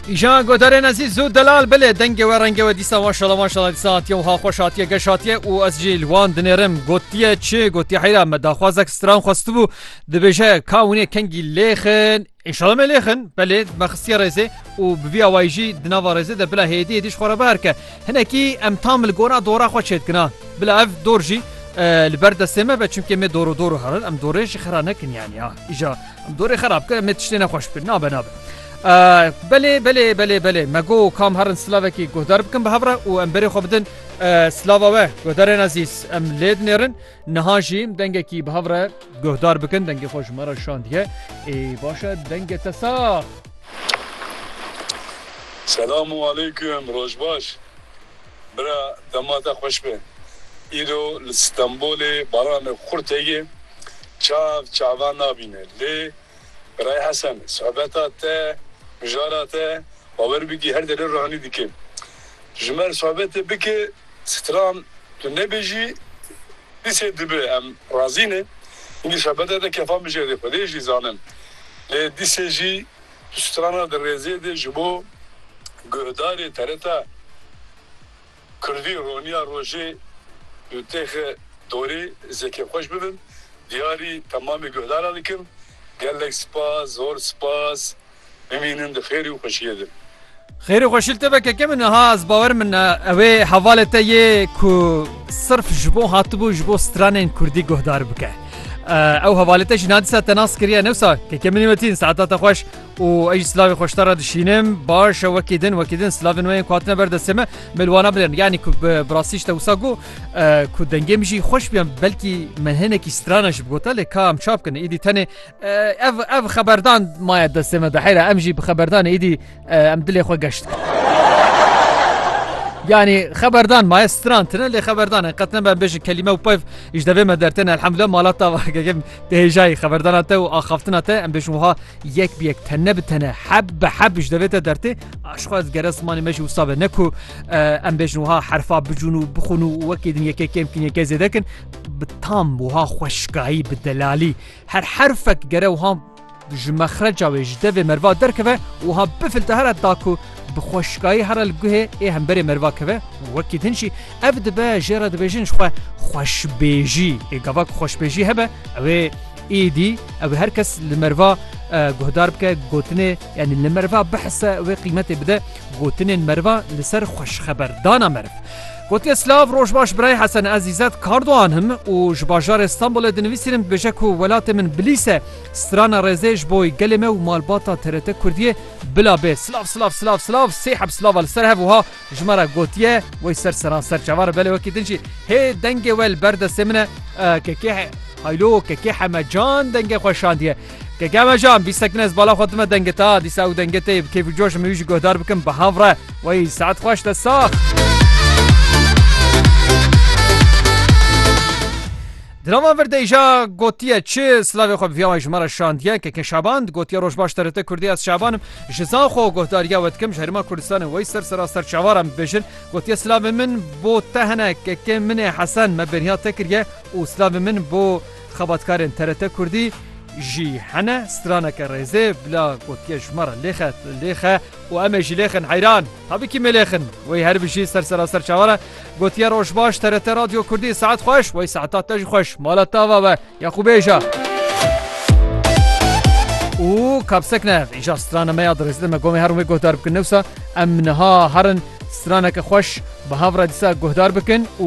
Îjan godarên ezî zû delal bilê dengê we rengê we dîsa maşala maşala dîsa hatiye û ha xweş hatiye geş hatiye û ez jî li wan dinêrim gotiye çi gotiye heyra me daxwazek stran xwestibû dibêje ka winê kengî lêxin Înşala me lêxin belê me xistiye rêzê û bi vî awayî jî di nava rêzê de bila hêdî hêdî ji xwe re biherke hinekî em tam li gora dora xwe çêdikina bila ev dor jî li ber destê me be çimkê me doro doro herin em dorê ji xera nekin yan ya îja Em dorê xerab kir em ê tiştê nexweş bikin. Nabe nabe. Belê belê belê belê me go kam herin silavekî guhdar bikin bi hev re û em berê xwe bidin silava we guhdarên ezîz em lê dinêrin niha jî dengekî bi hev re guhdar bikin dengê xwe ji me re şandiye ê başe dengê te sax Selam û aleykum roj baş. Bira dema te xweş be. Îro li Stenbolê baranê xurt heye çav çavan nabîne lê Biray Hesen sohbeta te mijara te bawer bikî her derê ruhanî dike. Ji mer sohbetê bike stran tu nebêjî dîsê dibe em razî ne. Hînî sohbeta te kefan bije lê xwedê jî zanin lê dîsê jî Di strana di rêzê de ji bo guhdarê TRT Kurdî Roniya Rojê û Têxe Dorê zêkê xweş bibin, diyarî temamê guhdaran dikim. Gelek spas, zor spas. Bimînin di xêrê û xweşiyê de. Xêrê xwe şil te be keke min niha ez bawer min e ewê hevalê te yê ku sirf ji bo hatibû ji bo stranên kurdî guhdar bike. Ew hevalê te jî nadîsa te nas kiriye newsa keke minî wetîn saeta te xweş û ej silavê xweşta re dişînim baş e wekî din wekî din silavên weyên ku hatine ber destê me mêlwana bilin yanî ku bi birasî te wisa got ku dengê min jî xweş biyan belkî me hinekî strana ji bigota lê ka em çap kin îdî tenê Ev ev xeberdan maye destê me dehêra em jî bi xeberdanê îdî em dilê xwe geşt. Yani xeberdan maye stran tine lê xeberdan en qetne ben bêjin kelîme û peyv îş devê me dertên elhemdulillah malata gegem dehêjayî xeberdana te û axaftina te em bêjin wiha yek bi yek tenne bi tene heb bi heb îş devê te dertê aşxwa ez gere zimanê me jî wisa be ne ku em bêjin wiha herfa bicûn û bixûn û wekê din yekê kêm kin yekê zêdekin bi tam wiha xweşkayî bi delalî Her herfek gere wiha ji mexreca wê ji devê merva derkeve û wiha bifilta here da ku bi xweşikayî here li guhê ê hemberê merva keve û wekî din jî ev dibe jê re dibêjin ji xwe xweşbêjî ê gava ku xweşbêjî hebe ew ê êdî ew ê her kes li merva guhdar bike gotinê yanî li merva bihise wê qîmetê bide gotinên merva li ser xweşxeberdana meriv. Gotiye Silav, Rojbaş Birayê Hesen Ez Îzzet Kardoğan im û ji bajarê Stenbolê dinivîsînim dibêje ku welatê min Bilîs e. Strana rêzê ji bo gelê me û malbata TRT Kurdiyê bila bê. Silav silav silav silav sê heb silava li ser hev wiha ji me re gotiye wey ser seran ser çavar belê wekî din jî hê dengê we li ber destê min e. Kekê Haylo Kekê Hemecan dengê xwe şandiye. Keke mejan bî sekin ez bala xwe dime dengeta dîsa û dengetê bi keyf û coş miyû jî guhdar bikim bi hav re wey saet xweş te sax. Drama vir deja gotiye çi slavê xwe viya ji me re şandiye keke şaban gotiye roj baş terete Kurdî ez şabanim ji zan xwe guhdariya we dikim ji herima Kurdistanê wey ser sera ser çawaran bibêjin gotiye slavê min bo te hene keke min ê hesen me bêriya te kiriye û slavê min bo Xebatkarên TRT Kurdî jî hene straneke rêzê bila gotiye ji me re lêxe lêxe û em ê jî lêxin heyran tabikî mêlêxin wey her bijî ser seraser çawan e gotiye roj baş TRT radyo kurdî saet xweş wey saeta te jî xweş mala tava be ya xwe bêja û kapsek ne îja strana me ya dirêzê me gomê herûmê guhdar bikin newsa em niha herin straneke xweş bi hav re dîsa guhdar bikin û